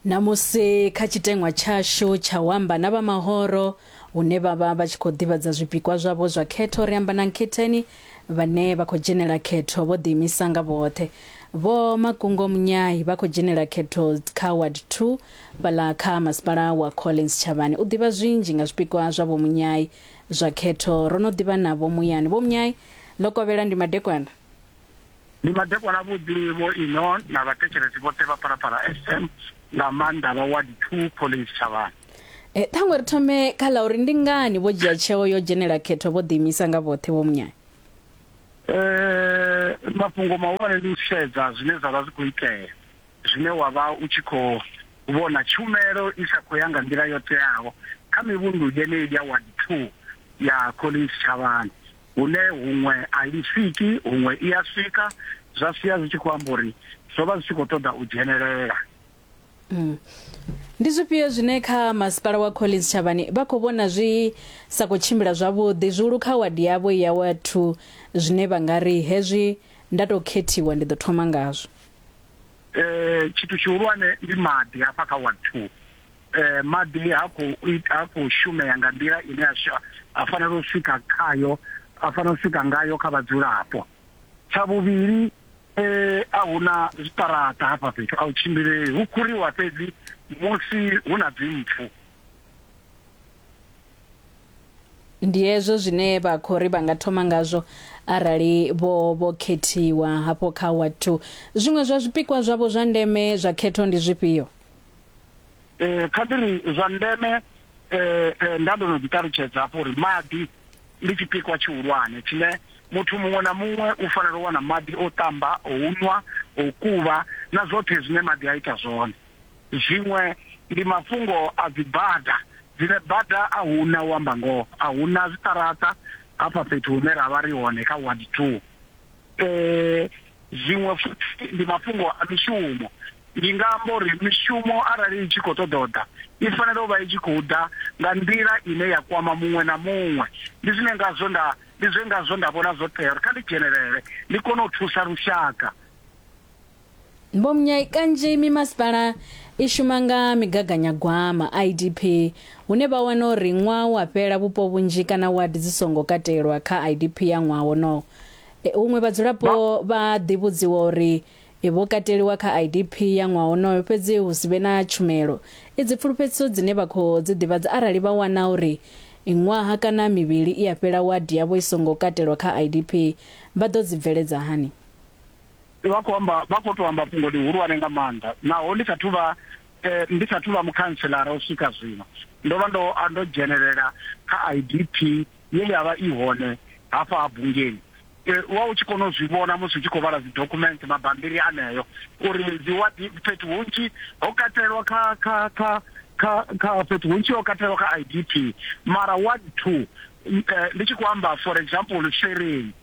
Ṋamusi kha tshiteṅwa tshashu tsha u amba na vha mahoro hune vha vha vha tshi khou ḓivhadza zwipikwa zwavho zwa khetho, ri amba na Nkhetheni vhane vha khou dzhenela khetho vho ḓiimisa nga vhoṱhe. Vho Makungo Munyayi vha khou dzhenela khetho kha Ward 2 fhaḽa kha masipala wa Collins Tshavhani. U ḓivha zwinzhi nga zwipikwa zwa Vho Munyayi zwa khetho, ro no ḓivha navho muyani. Vho Munyayi, Ḽokovhela ndi madekwana? Ndi madekwana avhuḓi Vho Ino na vhathetshelesi vhoṱhe vha Phalaphala FM nga maanḓa vha Ward 2 Collins Tshavhani. E, ṱhaṅwe ri thome kha ḽa uri ndi ngani vho dzhia tsheo yo dzhenela khetho vho ḓiimisa nga vhoṱhe Vho Munyanya? Eh, mafhungo mahulwane ndi u sedza zwine zwa vha zwi khou itea zwine wa vha u tshi khou vhona tshumelo i sa khou ya nga nḓila yo teaho kha mivhundu yeneyi ya Ward 2 ya Collins Tshavhani. hune huṅwe a i swiki huṅwe i a swika zwa sia zwi tshi khou amba uri zwo vha zwi tshi khou ṱoḓa u dzhenelela mm. ndi zwifhio zwine kha masipala wa collins tshavhani vha khou vhona zwi sa khou tshimbila zwavhuḓi zwihulu kha wadi yavho ya wa two zwine vha nga ri hezwi nda tou khethiwa ndi ḓo thoma ngazwo um tshithu tshihulwane ndi maḓi hafha kha ward two eh, maḓi ha khou ha khou shumea nga nḓila ine a fanela u swika khayo a fanela u swika ngayo kha vhadzulapo tsha vhuvhili eh, a hu na zwiṱaraṱa hafha fhethu a u tshimbilei hu khuriwa fhedzi musi hu na dzimpfu ndi hezwo zwine vha khou ri vha nga thoma ngazwo arali vho vho khethiwa hafho kha ward 2 zwiṅwe zwa zwipikwa zwavho zwa ndeme zwa khetho ndi zwifhio eh kha ndi ri zwa ndeme eh, eh nda ndo no ḓi ṱalutshedza hafho uri maḓi ndi tshipikwa tshihulwane tshine muthu muṅwe na muṅwe u fanela u wana maḓi o tamba o unwa o kuvha na zwoṱhe zwine maḓi a ita zwone zwiṅwe ndi mafhungo a dzibada dzine bada a huna u amba ngoho a huna zwiṱaraṱa hafha fhethu hune ra vha ri hone kha ward two Eh, zwiṅwe futhi ndi mafhungo a mishumo. Ndi nga amba uri mishumo arali i tshi khou ṱoḓa u ḓa, i fanela u vha i tshi khou ḓa nga nḓila ine ya kwama muṅwe na muṅwe. Ndi zwine ngazwo nda ndi zwe ngazwo nda vhona zwo tea uri kha ndi dzhenelele ndi kone u thusa lushaka. Vho Mnyayi, Kanzhi mimasipala i shuma nga migaganyagwama, IDP, hune vha wana uri ṅwaha u a fhela vhupo vhunzhi kana wadi dzi songo katelwa kha IDP ya ṅwaha wonowo. Huṅwe vhadzulapo vha a ḓivhudziwa uri vho kateliwa kha IDP ya ṅwaha wonoyo fhedzi hu si vhe na tshumelo. Idzi pfulufhedziso dzine vha khou dzi ḓivhadza arali vha wana uri ṅwaha kana mivhili i a fhela wadi yavho i songo katelwa kha IDP vha ḓo dzi bveledza hani? Vha khou amba, vha khou tou amba fhungo ḽihulwane nga maanḓa. Naho ndi sa thu vha, ndi sa thu vha mukhantselara u swika zwino, ndo vha ndo, ndo dzhenelela kha IDP ye ya vha i hone hafha ha Bungeni. U vha u tshi kona u zwi vhona musi u tshi khou vhala dzidokhumenthe, mabambiri aneo, uri dziwadi fhethu hunzhi ho katelwa kha, kha, kha, kha, kha, fhethu hunzhi ho katelwa kha IDP, mara ward two, ndi tshi khou amba for example Shwerini,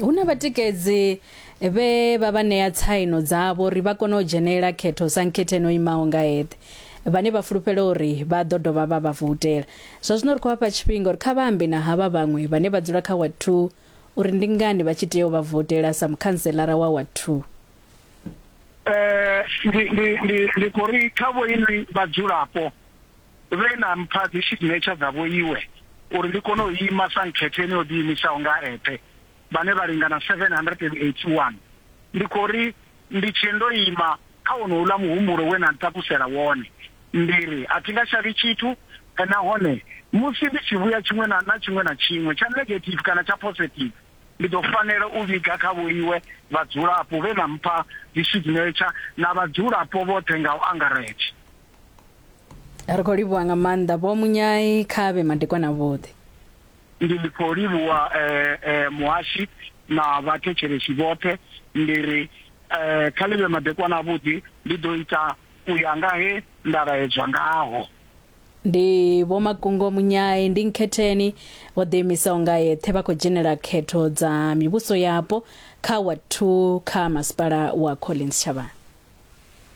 Hu na vhatikedzi vhe vha vha ṋea tsaino dzavho uri vha kone u dzhenela khetho sa nkhethe no imaho nga eṱhe, vhane vha fulufhela uri vha ḓo dovha vha vha voutela. Zwa zwino ri khou vha fha tshifhinga uri kha vha ambe na havha vhaṅwe vhane vha dzula kha Ward Two uri ndi ngani vha tshi tea u vha voutela sa mukhantselara wa Ward Two. Ndi, ndi, ndi, ndi khou ri kha vhoinwi vhadzulapo. vhe na mpha dzisignetsha dza vhoiwe uri ndi kone u ima sa nkhetho yeneyi yo ḓiimisaho nga a eṱhe, vhane vha lingana 781. Ndi khou ri ndi tshee ndo ima kha wonouḽa muhumbulo we na ntakusela wone, ndi ri a thi nga shavhi tshithu, nahone musi ndi tshi vhuya tshiṅwe na na tshiṅwe na tshiṅwe, tsha negative kana tsha positive, ndi ḓo fanela u vhiga kha vhoiwe vhadzulapo vhe na mpha dzisignetsha na vhadzulapo vhoṱhe nga u angaredza. ri khou livhuwa nga maanḓa vho munyai kha vhe madekwana vhoṱhe ndi khou livhuwa um muhashi na vhathetshelesi vhoṱhe ndi ri um kha ḽi vhe madekwana avhuḓi ndi ḓo ita u ya nga he nda laedzwa ngaho ndi vho makungo munyai ndi nkhetheni vho ḓiimisaho nga yeṱhe vha khou dzhenela khetho dza mivhuso yapo kha wa 2 kha masipala wa collins tshavhani